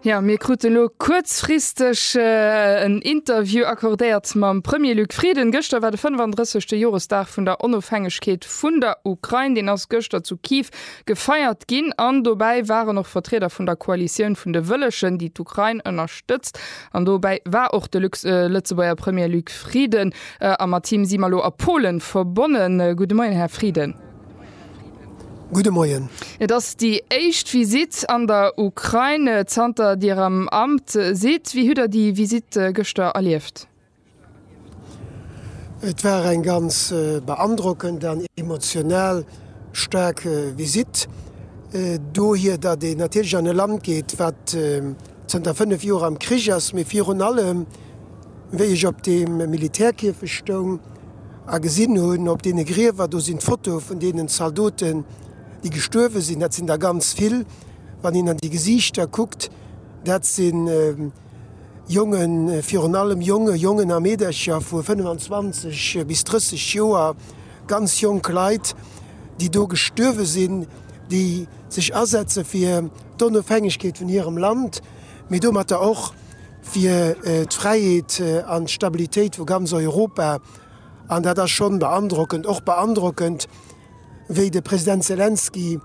Jo, mir krute elo kuerzfristeg en Interview accordéiert mam Premier Luc Frieden. Gëschter war de 35. Joresdag vun der Onofhängegkeet vun der Ukrain. Deen ass gëschter zu Kiew gefeiert ginn an dobäi waren och Vertrieder vun der Koalitioun vun de Wëllegen, déi d'Ukrain ënnerstëtzt. An dobäi war och de Lëtzebuerger Premier Luc Frieden a mat him si mer elo a Polen verbonnen. Gudde Moien, Här Frieden. Gudde Moien. Et ass déi éischt Visitt an der Ukrain zanter Dir am Amt sidd. Wéi hutt Der déi Visitt gëschter erlieft? Et war eng ganz beandrockend an emotional staark Visitt dohier, datt een natierlech an e Land geet, wat zanter 5 Joer am Krich ass, mee virun allem, Wéi ech op deem Militärkierfech stoung a gesinn hunn, op deene Griewer, do sinn d'Fotoe vun deenen Zaldoten, déi gestuerwe sinn, dat sinn der ganz vill, wann een an déi Gesiichter kuckt, dat si Jongen, virun allem Jongen, Jongen a Meedercher vu 25 bis 30 Joer, ganz jonk Leit, déi do gestuerwe sinn, déi sech asetze fir d'Onofhängegkeet vun hirem Land, mee domatter och. fir d'Fräiheet an d'Stabilitéit vu ganz Europa, an dat ass schonn beandrockend, och beandrockend, wéi de President Selenskyj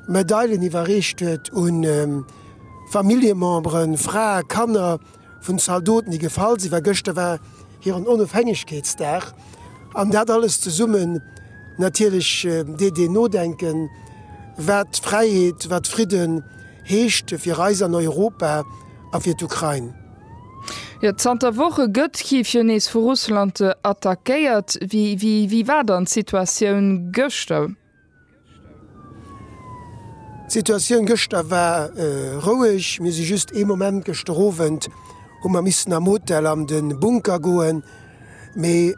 Medailen iwwerreecht huet u Familljememberen, Frae, Kanner vun Zaldoten, déi gefall sinn, well gëschter war hiren Onofhängegkeetsdag, an dat alles zesummen natierlech deet een nodenken, wat Fräiheet, wat Fridden heescht fir eis an Europa. a fir d'Ukrain. Jo, zanter Woche gëtt Kiew jo nees vu Russland attackéiert. Wéi war dann d'Situatioun gëschter? D'Situatioun gëschter war roueg. Mir si just ee Moment, gëschter Owend hu mer missen am Hotel an de Bunker goen, mee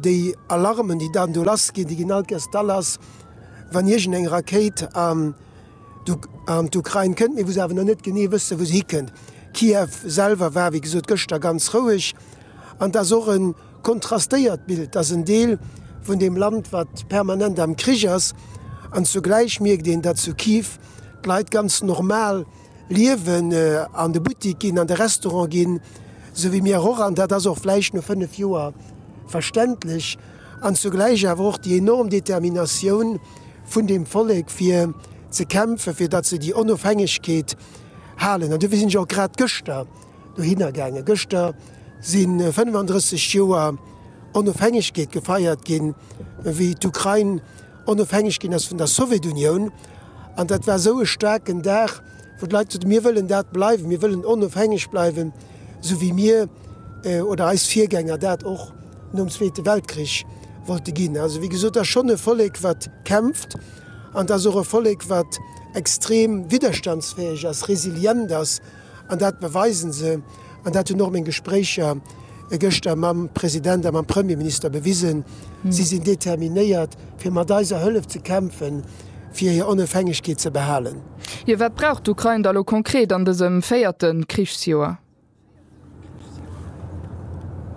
déi Alarmen, déi dann do lassginn, déi ginn alt gäss. D'Alarm ass, wann iergendeng Rakéit an. an d'Ukrain kënnt, mee wou se awer nach net genee wëssen, wou se hikënnt. Kiew selwer war, wéi gesot, gëschter ganz roueg an et ass och e kontrastéiert Bild. Et ass en Deel vun deem Land, wat permanent am Krich ass an zugläich mierkt een, datt zu Kiew d'Leit ganz normal liewen, an de Buttik ginn, an de Restaurant ginn, esou wéi mir och. An dat ass och vläicht no fënnef Joer verständlech. an zugläich awer och déi enorm Determinatioun vun deem Vollek fir ze kämpfen, fir datt se déi Onofhängegkeet halen. An dofir sinn ech och grad gëschter dohinner gaangen. Gëschter si 35 Joer Onofhängegkeet gefeiert ginn, wéi d'Ukrain onofhängeg ginn ass vun der Sowjetunioun. An dat war esou e staarken Dag, wou d'Leit gesot hunn, mir wëllen dat bleiwen, mir wëllen onofhängeg bleiwen, esou wéi mir oder eis Virgänger dat och. nom Zweete Weltkrich wollte ginn. Also wéi gesot, et ass schonn e Vollek, wat kämpft, an et ass och e Vollek, wat extrem widderstandsfäeg ass, resilient ass, an dat beweisen se, an dat hunn och meng Gespréicher gëschter mam President a mam Premierminister bewisen. Si sinn determinéiert, fir mat eiser Hëllef ze kämpfen, fir hir Onofhängegkeet ze behalen. Jo, wat brauch d'Ukrain da lo konkret an dësem véierte Krichsjoer?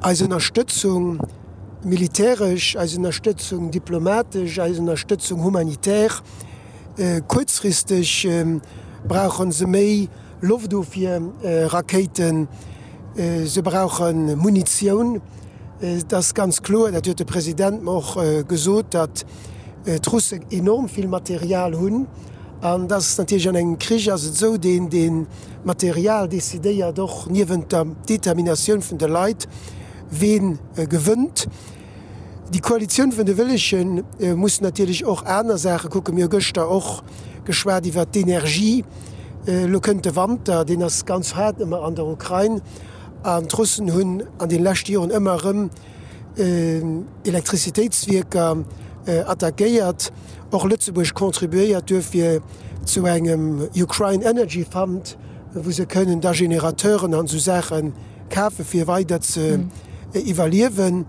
Eis Ënnerstëtzung militäresch, eis Ënnerstëtzung diplomatesch, eis Ënnerstëtzung humanitär. Kuerzfristeg brauche se méi Loftofwierrakéiten, se brauche Munitioun. Et ass ganz kloer, dat huet de President mer och gesot, datt d'Russen enorm vill Material hunn. An et ass natierlech an engem Krich ass et esou, deen, deen. D'Material decidéiert och niewent der Determinatioun vun de Leit, ween gewënnt. Déi Koalitioun vun de Wëllege muss natierlech och aner Saache kucken. Mir hu gëschter och geschwat iwwert d'Energie. Elo kënnt de Wanter, deen ass ganz haart ëmmer an der Ukrain, an d'Russen hunn an de leschte Joren ëmmer erëm, Elektrizitéitswierker attackéiert. Och Lëtzebuerg contribuéiert duerfir zu engem Ukraine Energy Fund, wou se kënnen da Generateuren an esou Saache kafe fir weider ze iwwerliewen.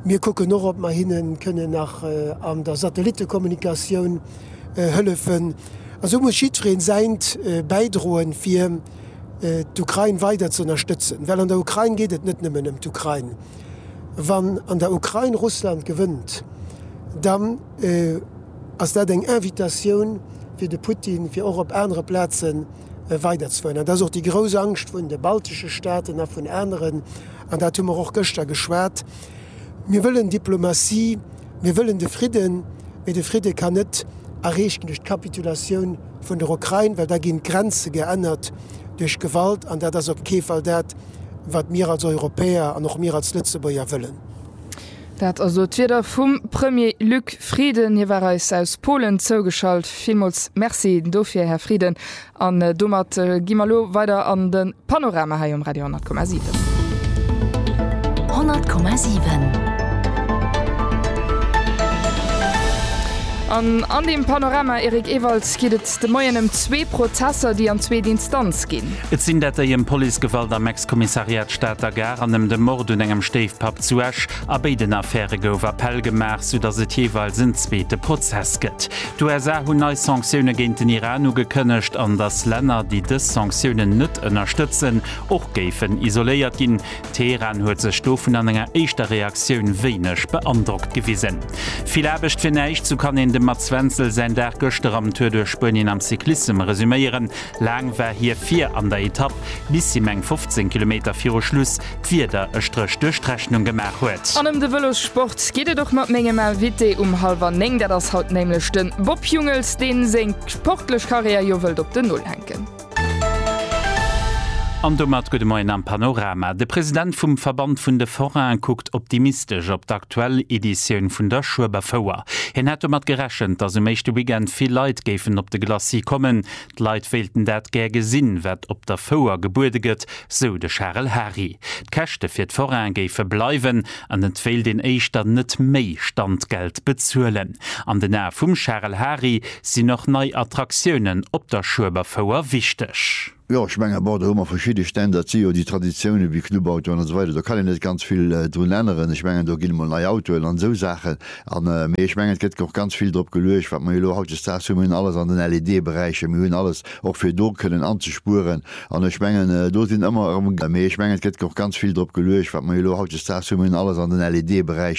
Mir kucken och, ob mer hinne kënnen nach an der Satellittekommunikatioun hëllefen. Esou muss jiddweree säint bäidroen, fir. d'Ukrain weider ze ënnerstëtzen, well an der Ukrain geet et net nëmmen ëm d'Ukrain. Wann an der Ukrain Russland gewënnt, dann ass dat eng Invitatioun fir de Putin, fir och op anere Plazen weider ze fueren. Dat ass och déi grouss Angscht vun de baltesche Staaten a vun aneren, an dat hu mer och gëschter geschwat. Mir wëllen Diplomatie. Mir wëllen de Fridden, mee de Fridde kann net erreecht ginn duerch d'Kapitulatioun vun der Ukrain, well da ginn d'Grenze geännert duerch Gewalt, an dat ass op kee Fall dat, wat mir als Europäer an och mir als Lëtzebuerger wëllen. Dat also d'Wierder vum Premier Luc Frieden. Hie war eis aus Polen zougeschalt. Villmools Merci dofir, Här Frieden. An domat gi mer elo weider an de Panorama hei um Radio 10,7. 100,7. An an deem Panorama, Eric Ewald, geet et de Moien ëm zwee Prozesser, déi an zweet Instanz ginn. Et sinn dat déi ëm Policegewalt am Ex-Kommissariat Stater Gare an ëm de Mord un engem Stéifpapp zu Esch. A béiden Affäre gouf Appell gemaach, soudatt et jeeweils en zweete Prozess gëtt. D'USA hunn nei Sanktioune géint den Iran ugekënnegt, an datt Länner, déi dës Sanktiounen net ënnerstëtzen, och géifen isoléiert ginn. Teheran huet sech dovun an enger éischter Reaktioun wéineg beandrockt gewisen. Vill Aarbecht fir näischt, sou kann een dem Mats Wenzel säin Dag gëschter am Tour duerch Spuenien am Cyclissem resuméieren. Laang war hie vir an der Etapp, bis him eng 15 Kilometer viru Schluss d'Wieder e Stréch duerch d'Rechnung gemaach huet. An ëm de Vëlossport geet et och mat mengem Invité um hallwer néng. Dat ass haut nämlech de Bob Jungels, deen seng sportlech Karriär jo wëllt op den Null hänken. An domat gudde Moien am Panorama. De President vum Verband vun de Forainen kuckt optimistesch op d'aktuell Editioun vun der Schueberfouer. Hien hätt domat gerechent, datt um éischte Weekend vill Leit géifen op de Glacis kommen. D'Leit wéilten dat gär gesinn, wat op der Fouer gebuede gëtt, sou de Charel Hary. D'Käschte fir d'Forain géife bleiwen an et wéilt een éischter net méi Standgeld bezuelen. An den Ae vum Charel Hary sinn och nei Attraktiounen op der Schueberfouer wichteg. Jo, ech menge bon, do hu mer verschidde Stänn, dat si jo déi Traditiounen, wéi Clubautoen an esou weider, do kann een net ganz vill drun änneren. Ech mengen, do ginn emol nei Autoen an esou Saachen, An, mee ech mengen, et gëtt och ganz vill drop geluecht, wat mer jo elo hautdesdaags hunn. Mir hunn alles an den LED-Beräicher, mir hunn alles och fir do kënnen anzespueren. An ech mengen, do sinn ëmmer erëm, mee ech mengen, et gëtt och ganz vill drop geluecht, wat mer jo elo hautdesdaags hunn. Mir hunn alles an den LED-Beräicher.